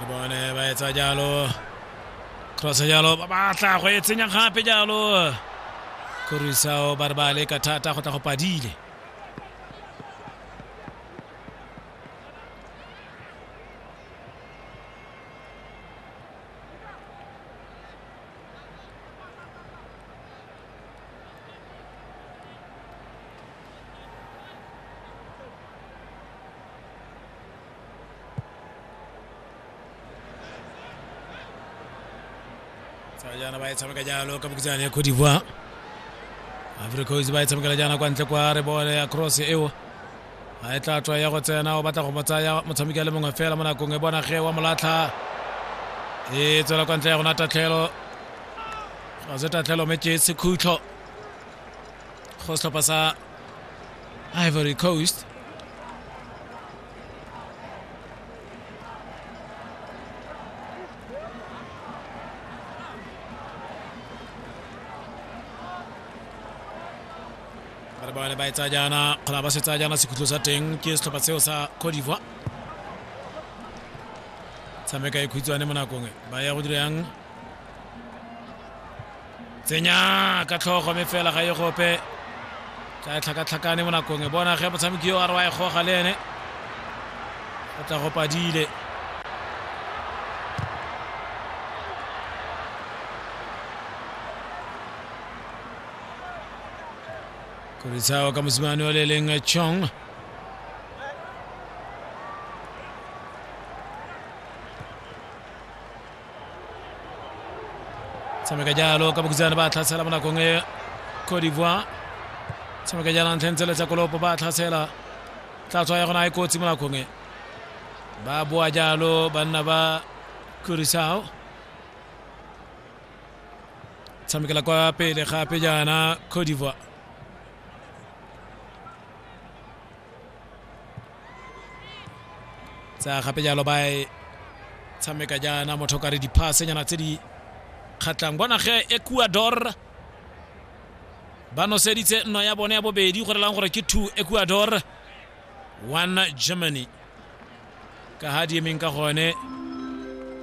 re bone ba etsa jalo cross jalo ba batla go e tsenya gape jalo korisao ba re ba leka thata go tla go padile tsala jaana ba e tshameka jalo ka bokitsane ya cote divoire africois ba e tshamekela jaana kwa ntle kwa re bole ya cross eo a e tla tswa ya go tsena o batla go mo tsaya motshameki a le mongwe fela mo nakong e bona ge wa molatlha e tswela kwa ntle ya gona tatlhelo ga se tatlhelo mme ke sekhutlo go setlhopha sa ivory coast bana ba bone ba e tsaya jaana kgona ba se tsaya jaana sekhutlho sa teng ke setlhopha seo sa cote d'ivoire tshameka e khutshwane mo nakong e. ba ya go dira yang tsenya ka tlhogo me fela ga e gope tla e tlhakatlhakane mo nakong e bona ge motshameki yo a re wa e goga le ene o tla go padile koritshao ka mosimane o le leng chong tshameka jalo ka bokhutsana ba tlhatsela mo nakong e cote d'ivoire tshameka jalo ntlheng tsele tsa kolopo ba tlhatsela tla tshwa ya gona e kotsi mo nakong e ba boa jalo banna ba kurisao tshamekela kwa pele gape jaana cote d'ivoire tsa gape jalo ba e tshameka jaana motho ka re diphasenyana tse di kgatlhang bona ge ecuador ba noseditse nno ya bone ya bobedi go relang gore ke two ecuador one germany ka ha di emeng ka gone